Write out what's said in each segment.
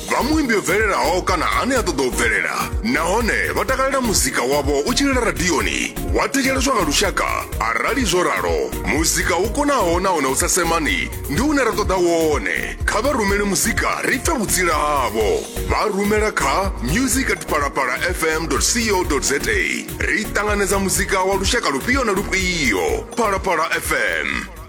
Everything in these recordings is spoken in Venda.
vha muimbi o bvelelaho kana ane a ṱoḓa u bvelela nahone vha takalela muzika wavho u tshi lila radioni wa thetsheleswa nga lushaka arali zwo ralo muzika u konaho nahone u sa semani ndi une ra ṱoḓa wone kha vha rumele muzika ri pfe vhutsila havho vha rumela kha music at palapala fm co za ri ṱanganedza muzika wa lushaka lufhio na lufhio palapala fm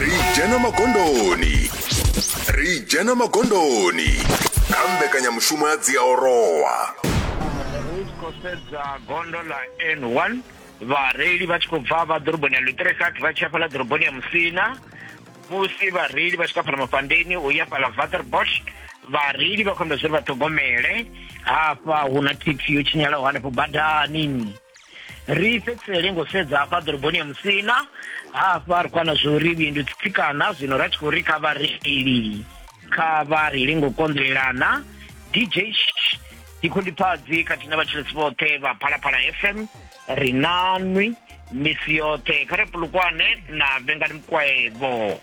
ri dzhena magondoni ri dzhena magondoni kha mbekanyamushumo ya dziaorowa ri tshi khou sedza gondo ḽa n1 vhareili vha tshi khou bva vha ḓoroboni ya lutrekat vha tshi ya fhaḽa ḓoroboni ya musina musi vhareili vha tshi kha fhaḽa mafhandeni u ya fhaḽa vaterbosch vhareili vha khou amba zwori vha ṱhogomele hafha hu na thekhisi yo tshinyalaho hanefho badani ri fhedzisele ngo sedza hafha ḓoroboni ya musina hafha ri kwana zwo ri vhindu tsitsikana zwino ra tshi khou ri kha vhareili kha vha reili ngo konḓelelana dj dzikhundipfadzi khathihi na vhatshilisi vhoṱhe vha phalaphala fm ri na nwi misi yoṱhe kha ri pulukwane na vhengani mukwaevo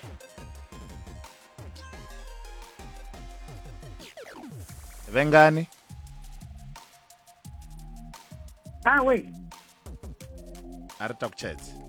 vhengani Ah, we. a ri takutshedze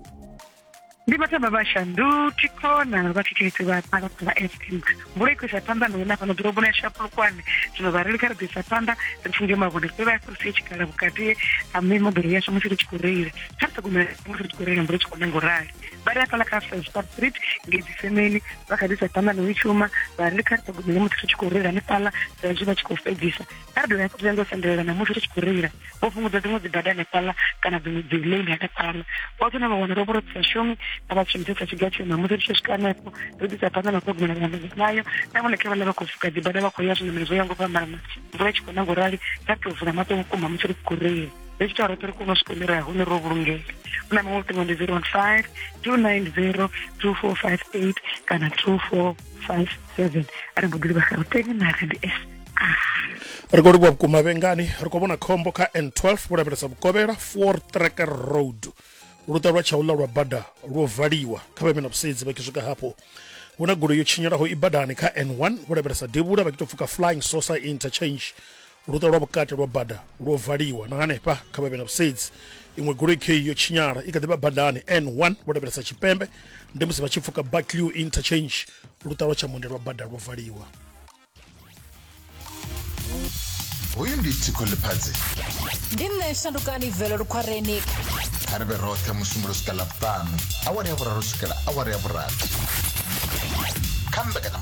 Ndi vhathu vha vhashandu tikhona vha thikheledzi vha phala phala FM. Mvula i khou isa phanḓa na hune fhano ḓoroboni ya Shapulukwane. Zwino vhareili kha ri ḓo isa phanḓa ri funge mavhone ri vha fhirisa tshikhala vhukati ha mimoḓoro yashu musi ri tshi khou reila. Kha ri ṱhogomele musi ri tshi khou reila mvula i tshi khou na nga u rali. Vha ri hafhaḽa kha Fellstar Street ngei Dzisemeni vha kha ḓi isa phanḓa na u i shuma. Vhareili kha ri ṱhogomele musi ri tshi khou reila hanefhaḽa sa izwi vha tshi khou fhedzisa a ri dovha ri ndo sendelela namusi ri tshi khou reila vho fhungudza dziṅwe dzibada hanefhaḽa kana dziṅwe dzi lane hanefhaḽa vha tsho na vha wana ro vhoro sa shumi a vha shumisesa tshiga tshiyo namusi ri tshi swika hanefho ri ḓisa phanḓa na u ṱhogomela vhaṋameli vhayo na vhone khe vha ḽa vha khou fuka dzibada vha khou ya zwiṋamelo zwo ya ngo fhambana mvula i tshi khou na ngorali ra tou vula maṱo vhukuma musi ri tshi khou reila ri tshi tou roṱhe ri kone u swika hune ra hune ro vhulungela u na maṅwe luṱingo ndi zero one five two nine zero two four five eight kana two four five seven a ri mbo ḓi livha gauteng na randf ri khou livhuwa vhukuma vhengani ri khou vhona khombo kha n12 vho lavhelesa vhukovhela four track road luṱa lwa tshaula lwa bada lwo valiwa kha vha na vhusedzi vha swika hafho hu na goloi yo tshinyalaho i badani kha n1 vho lavhelesa devhula vha tou pfuka flying sosa interchange luṱa lwa vhukati lwa bada lwo valiwa na hanefha kha vha na vhusedzi iṅwe goloi khe yo tshinyala i kha ḓi vha badani n1 vho lavhelesa tshipembe ndi musi vha tshi pfuka baclew interchange luṱa lwa tshamunde lwa bada lwo valiwa hoyu ndi tsiko ḽifhadzi ndi nṋe shandukani velo lukhwareni kha ri vhe roṱhe musumbulo swika ḽavhuṱanu awara ya vhuraru swikela awara ya vhurathi kha mbekanya